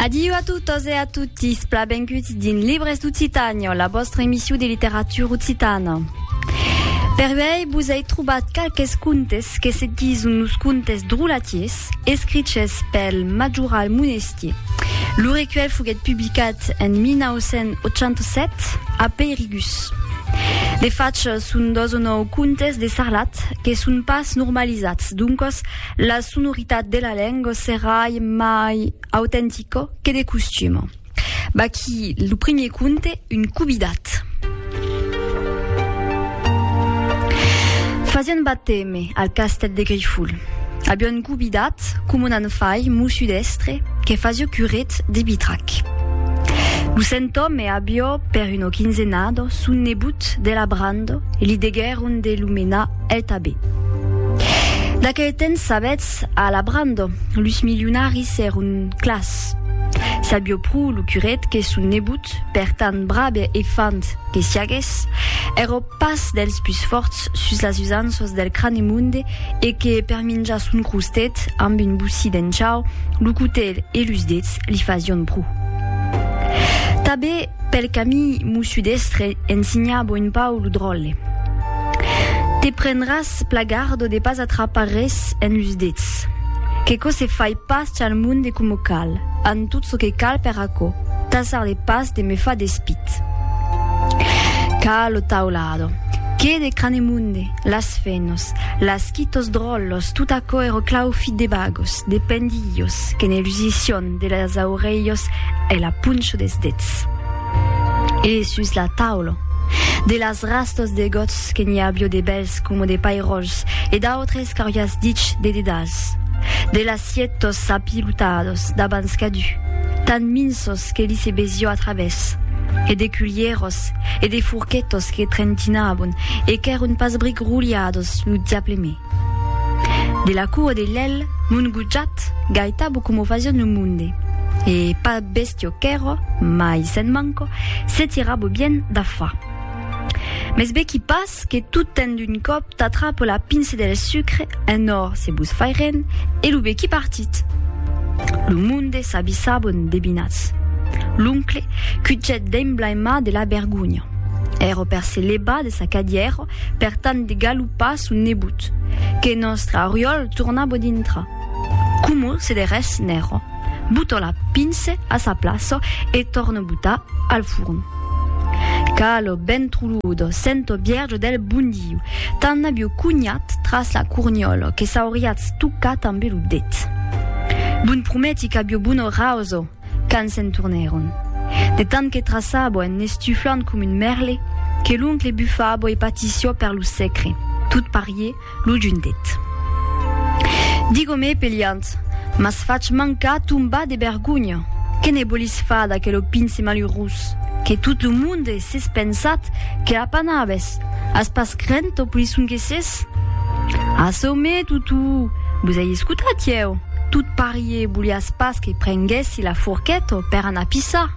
Adiu a totes e a totis, pla benguts dins Libres d'Occitània, la vòstra emission de literatura occitana. Per uèi vos ai trobat qualques contes que se dison los contes drolatiers, escriches pel Majoral Monestier. Lo recuèlh foguèt publicat en 1987 a Peirigus. De fach, son dos o nòu contes de Sarlat que son pas normalizats, doncas La sonoritat de la lenga serai mai autentica que de costuma. Vaquí lo primier conte, Un cubidat. Fasiá un bateme al castèl de Grifol. Aviá un cubidat, coma un anfai, mossut èstre, que fasiá curet de bitrac. Lo sentòme aviá per una quinzenada son nebot de la branda e li deguèron de lo menar El tabé. D'aquel temps sabetz, a la brando, lus milionaris èron clars. Sabió pro lo curet que son nebot, per tant brabe e fand que siagues, èra pas dels pus fòrts sus las usanças del Cranemonde e que, per minjar son crostet amb un bocí d'enchau, lo cotelh e lus dets li fasián pro. Tabé. Pel camí m'o sudestre ensinhabo un pau lo dròlle. Te prendràs plagardo de pas atrapar res en los dets. Qu'aquò se fai pas chal monde coma cal, an tot çò que cal per aquò, tasar de pas de me far despit. Ca lo taulado, que de Cranemunde, las fenos, las quitos dròllos, tot aquò ero claufit de bagos, de pendilhos, que ne lusission, De las aurelhos e la puncho des dets. E sus la taula. De las rastos de gots que n'i avió de bèls coma de pairòls e d'autres qu'auriás dich de dedals. De las sietos apilotados d'abans cadu, tan minsos que li se besió a travès. E de culhieros e de forquetos que trentinabon e qu'èron pas bric roliados lo diable me. De la cua de lèl mon gojat gaitabo coma o fasion lo monde, e pas bèstia qu'èra, mai se'n manca, se tirabo bien da fa. Mès vequi pas que tot ten d'un còp t'atrapa la pince del sucre en or se vos fai ren e lo vequi partit. Lo monde s'abissabo endebinats. L'oncle cuchèt d'emblaimat de la bergonha. Èra per se levar de sa cadièra per tant de galopar son nebot, que nòstre Oriòl torna bo dintra. Como se de res n'èra, boto la pince a sa plaça e torno botar al forn. Calo ben truludo, sento vierge del bon Diu, tan aviu cunhat tras la corniòla que s'auriatz tocat ambe lo det. Bon prometi qu'aviu bona rausa! Quand se'n tornèron. De tant que traçabo en n'estuflant com un mèrle, que l'oncle bufabo e patissió per lo secre, tot parié, lo juntet. Digomé peliant, m'as fach mancar tombar de bergonha! Que ne bolis far d'aquelo pince malurós, que tot lo monde s'es pensat que l'apanabes? As pas crent, o polisson que ses? Jesús. Assomé, Tutu! Vos ei escotat ieu? Tot parié voliás pas que prenguèssi la forqueta per anar pissar.